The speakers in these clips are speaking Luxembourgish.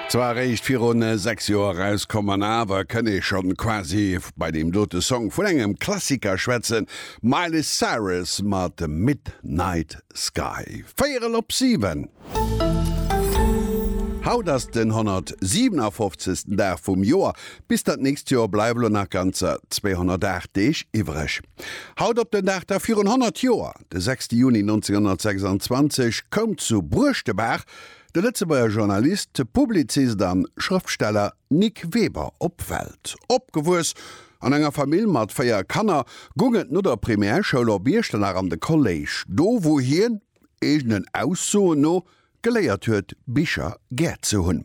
Zwar eréischt virun 6 Joer erauskomm an awer kënn ee schonn quasi bei deem dote Song vun engem Klassiker schwätzen, Miley Cyrus mat Midnight Sky, véierel op 7. Haut ass den 157. Dag vum Joer, Bis dat nächst Joer bleiwe lo nach ganzer 208 Deeg iwwereg. Haut op den Dag da virun 100 Joer, de 6 Juni 1926, koum zu Bruechtebaach de Lëtzebuerger Journalist, Publizist a Schrëftsteller Nic Weber op d'Welt. Opgewuess an enger Famill mat véier Kanner, goung et no der Primärschoul op Iechternach an de Kolléisch, do wou hien, eegenen Aussoen no, geléiert huet, Bicher gär ze hunn.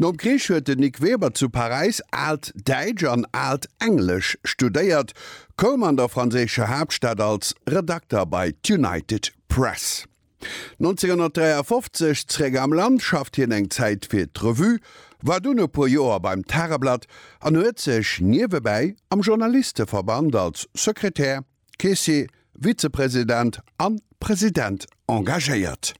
Nom Krich huet den Nic Weber zu Paräis aalt Däitsch an aalt Englesch studéiert, koum an der franséischer Haaptstad als Redakter bei d'United Press. 1953 zréck am Land, schafft hien eng Zäit fir d'Revue, war dunn e puer Joer beim Tageblatt an huet sech niewebäi am Journalisteverband als Sekretär, Caissier, Vizepresident an President engagéiert.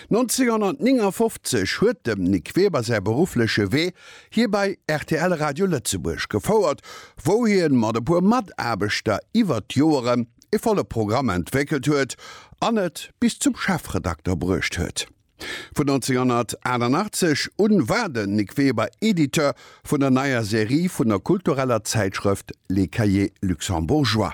1959 huet dem Nic Weber säi beruffleche Wee hie bei rtl Radio Lëtzebuerg gefouert, wou hie mat e puer Mataarbechter iwwert d'Joeren e volle Programm entwéckelt huet an et bis zum Chefredakter bruecht huet. Vun 1988 un war den Nic Weber Editeur vun der neier Serie vun der kultureller Zäitschrëft Les Cahiers Luxembourgeois.